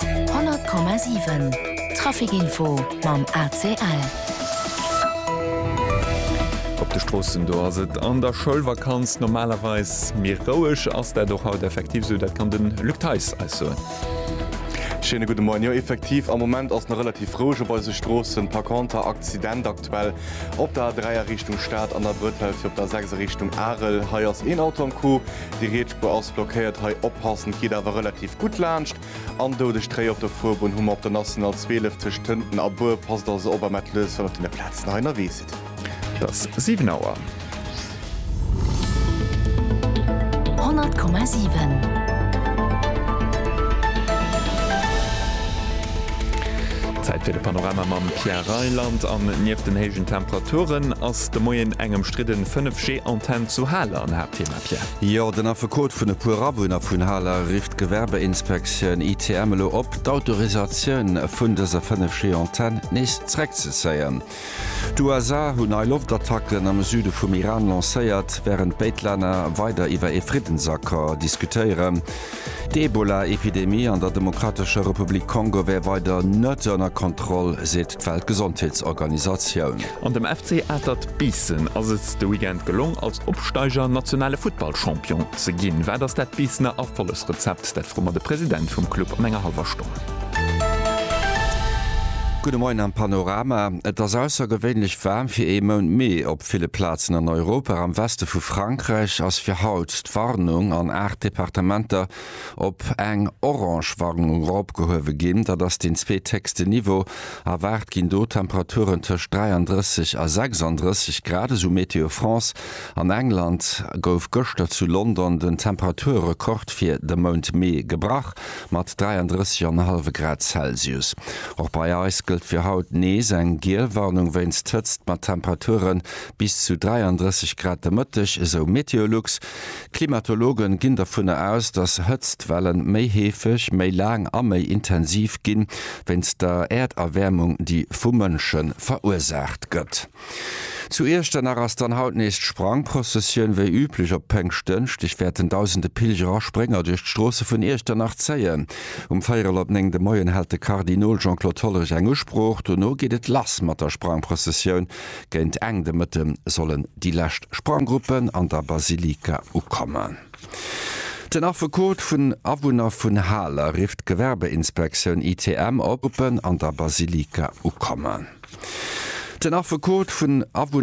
100,7 Traficinfo mam ACL. Op de Stroossen do ass et an der Schoulvakanz normalerweis méi roueg. Ass dat och haut effektiv esou? Dat kann de Luc Theis eis soen. Schéine gudde Moien. Jo, effektiv, am Moment ass nach relativ roueg op eise Stroossen. Par conter, Accident aktuell op der A3 a Richtung Stad an der Brëtell fir op der A6 a Richtung Arel. Hei ass een Auto am Coup. Déi Rietspuer ass blockéiert, hei oppassen, et geet awer relativ gutt laanscht. An doudeg Tréi op der Fuerbunn hu mer op der National 12 tëscht Tënten a Buer. Passt also op a mellt lech, wann op deene Plazen hei ënnerwee sidd. Et ass 7 Auer. 100,7 Zäit fir de Panorama mam Pierre Reyland an nieft den héijen Temperaturen ass. De Moien eng ëmstridden 5G Antenn zu Haler an Haaptthema Pierre. Jo, den Affekot vun e puer Awunner vun Haler rifft d'Gewerbeinspektioun, ITM, elo op, d'Autorisatioun vun dëser 5G Antenn nees zréckzezéien. D'USA hunn nei Loftattacken am Süde vum Iran lancéiert, wärend béid Länner weider iwwer ee Friddensaccord diskutéieren. D'Ebola Epidemie an der Demokratescher Republik Kongo wär weider net ënner Kontroll, seet d'Weltgesondheetsorganisatioun. An dem FC Atert Biissen ass et de Weekend gelong, als Opsteiger nationale Futtballchampion ze ginn. Wat ass dat Biissener Erfollegsrezept? Dat froe mer de President vum Club an enger hallwer Stonn. Gudde Moien am Panorama. Et ass aussergewéinlech waarm fir ee Mount Mee op ville Plazen an Europa. Am Weste vu Frankräich ass fir haut d'Warnung an 8 Departementer. op eng orange Warnung eropgehuewe ginn. Dat ass deen zweetécksten Niveau. Erwaart ginn do Temperaturen tëscht 33 a 36 Grad, esou Météo France. An England gouf gëschter zu London den Temperaturrekord fir de Mount Mee gebrach, mat 33 an e hallwe Grad Celsius. Och bei eis gëllt fir haut nees eng giel Warnung wéinst Hëtzt, mat Temperature bis zu 33 Grad de Mëtteg, esou Meteolux. D'Klimatologe ginn dovunner aus, datt Hëtztwelle méi heefeg, méi laang a méi intensiv ginn, wéinst der Äerderwäermung, déi vu Mënsche verursaacht gëtt. Zu Iechternach ass dann haut nees d'Sprangprozessioun. Wéi üblech op Péngschtdënschdeg wäerten dausende Pilger a Sprénger duerch d'Stroosse vun Iechternach zéien. Um véierel op néng de Moien hält de Kardinol Jean-Claude Hollerich eng Usprooch. Dono geet et lass mat der Sprangprozessioun, Géint Enn de Mëtte sollen déi lescht Spranggruppen an der Basilika ukommen. Den Affekot vun Awunner vun Haler rifft d'Gewerbeinspektioun ITM op, Gruppen an der Basilika ukommen. Den Affekot vun Awunner.